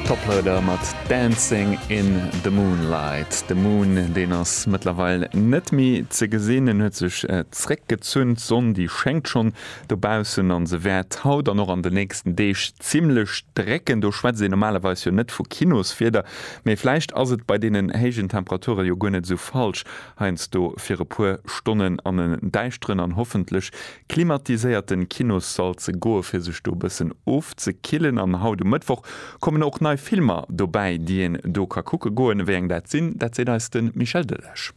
Toploader mat Dancing in the Moonlight. De Moon, deen ass mëttlerweil net méi ze gesinn. En huet sech zréck gezunn. D'Sonn, déi schéngt schonn dobaussen an se wäert haut an och an de nächsten Deeg zimmlech drécken. Do schwätzt een normalerweis jo net vu Kinoswieder, mee vläicht ass et bei deenen héijen Temperature jo guer net esou falsch heiansdo fir e puer Stonnen an en däischteren an hoffentlech klimatiséierten Kinossall ze goen fir sech do bëssen ofzekillen an haut um Mëttwoch kommen och nei Filmer dobäi déi een do ka kucke goen. Wéi eng dat sinn, dat seet eis den Michel Delage.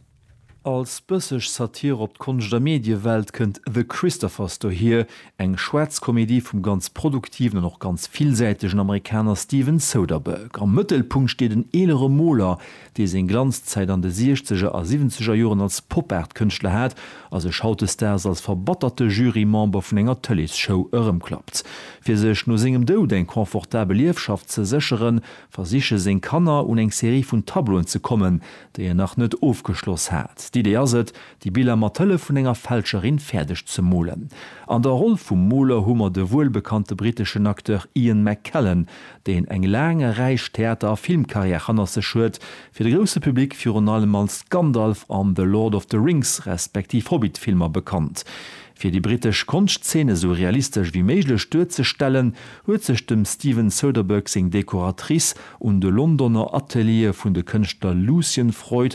Als bësseg Satire op d'Konscht a Mediewelt kënnt The Christophers dohier, eng schwaarz Komedie vum ganz produktiven an och ganz villsäitegen Amerikaner Steven Soderbergh. Am Mëttelpunkt steet en eelere Moler, dee seng Glanzzäit an de Siechzeger a Siwwenzeger Joren als Pop-Art-Kënschtler hat a sech hautdesdaags als verbatterte Jury-Member vun enger Tëlees-Show erëmklappt. Fir sech no sengem Doud eng confortabel Ierfschaft ze sécheren, versiche seng Kanner, un eng Serie vun Tableauen ze kommen, déi en nach net ofgeschloss hat. D'Idee ass et, Déi Biller mat Hëllef vun enger Fälscherin fäerdeg ze molen. An der Roll vum Moler hu mer de wuelbekannte britteschen Acteur Ian McKellen, deen eng laang a räich Theater a Filmkarriär hannert sech huet, fir de grousse Public virun allem als Gandalf an The Lord of the Rings respektiv Hobbit Filmer bekannt. Fir déi brittesch Konschtzeen esou realistesch wéi méiglech duerzestellen, huet sech dem Steven Soderbergh seng Dekoratrice un de Londoner Ateliere vun de Kënschtler Lucian Freud,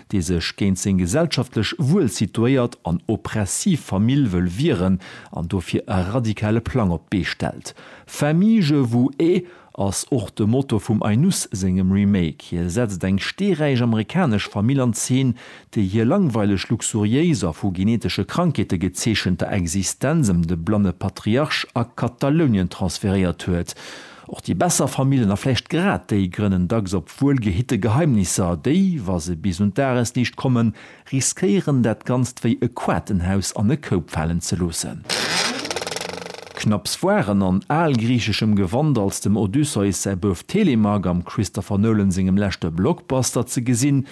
dee sech géint seng gesellschaftlech wuel situéiert an oppressiv Famill wëll wieren an dofir e radikale Plang op d'Bee stellt. Famille je vous ai ass och de Motto vum Ainus sengem Remake. Hie setzt eng steeräich amerikanesch Famill an Zeen, déi hir langweileg luxuriéis a vu genetesche Krankheete gezeechenter Existenz ëm de blanne Patriarch a Katalounien transferéiert huet. Och déi besser Famillen, a vläicht grad déi, grënnen dacks op wuelgehitte Geheimnisser. Déi, wa se bis un d'Dagesliicht kommen, riskéieren dat Ganzt wéi e Quatenhaus an e Koup falen ze loossen. Knapps waren an algriicheschem Gewand als dem Odysseus säi Bouf Telemach am Christopher Nolan sengem leschte Blockbuster ze gesinn,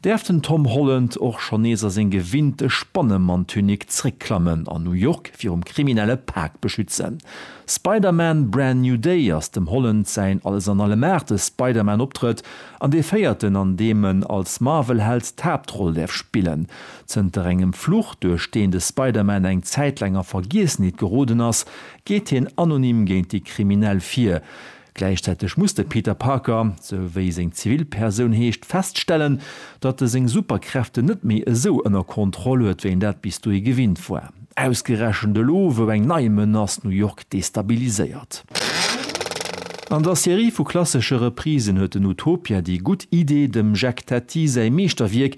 Däerf den Tom Holland och schonn nees a seng gewinnte Spannemann-Tunique zréckklammen an New York virum kriminelle Pak beschützen? Spider-Man, Brand New Day ass dem Holland säin Alles-an-Allem-Aart-e Spider-Man-Optrëtt an dee véierten, an deem en als Marvel-Held d'Haaptroll däerf spillen. Zënter engem Fluch, duerch deen de Spider-Man eng Zäit laang a Vergiessenheet geroden ass, geet hien anonym géint déi Kriminell vir. Gläichzäiteg muss de Peter Parker, sou wéi seng Zivilpersoun heescht, feststellen, datt e seng Superkräften net méi esou ënner Kontroll huet, wéi en dat bis dohi gewinnt war. Ausgerechent elo, wou eng nei Menace New York destabiliséiert. An der Serie vu klassesche Reprisen huet den Utopia déi gutt Idee, dem Jacques Tati säi Meeschterwierk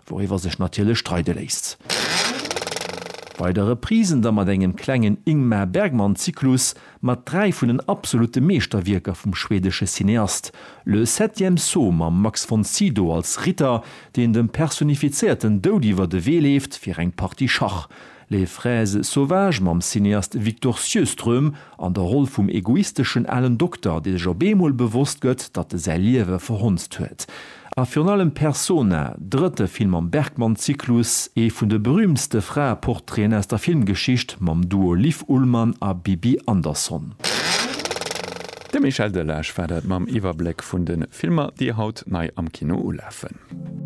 Wouriwwer sech natierlech streide léisst. Bei der Reprise da mat engem klengen Ingmar Bergman-Zyklus mat dräi vun den absolute Meeschterwierker vum schwedesche Cineast, Le septième saut mam Max von Sydow als Ritter, deen dem personifizéierten Doud iwwer de Wee leeft fir eng Partie Schach. Les fraises sauvages mam Cineast Victor Sjöström an der Roll vum egoisteschen alen Dokter, dee sech op eemol bewosst gëtt, datt e säi Liewe verhonzt huet. A virun allem Persona, drëtte Film am Bergman-Zyklus, ee vun de berüümtste Fraeportraiten aus der Filmgeschicht, mam Duo Liv Ullmann a Bibi Andersson. De Michel Delage war dat mam Iwwerbléck vun de Filmer, déi haut nei am Kino ulafen.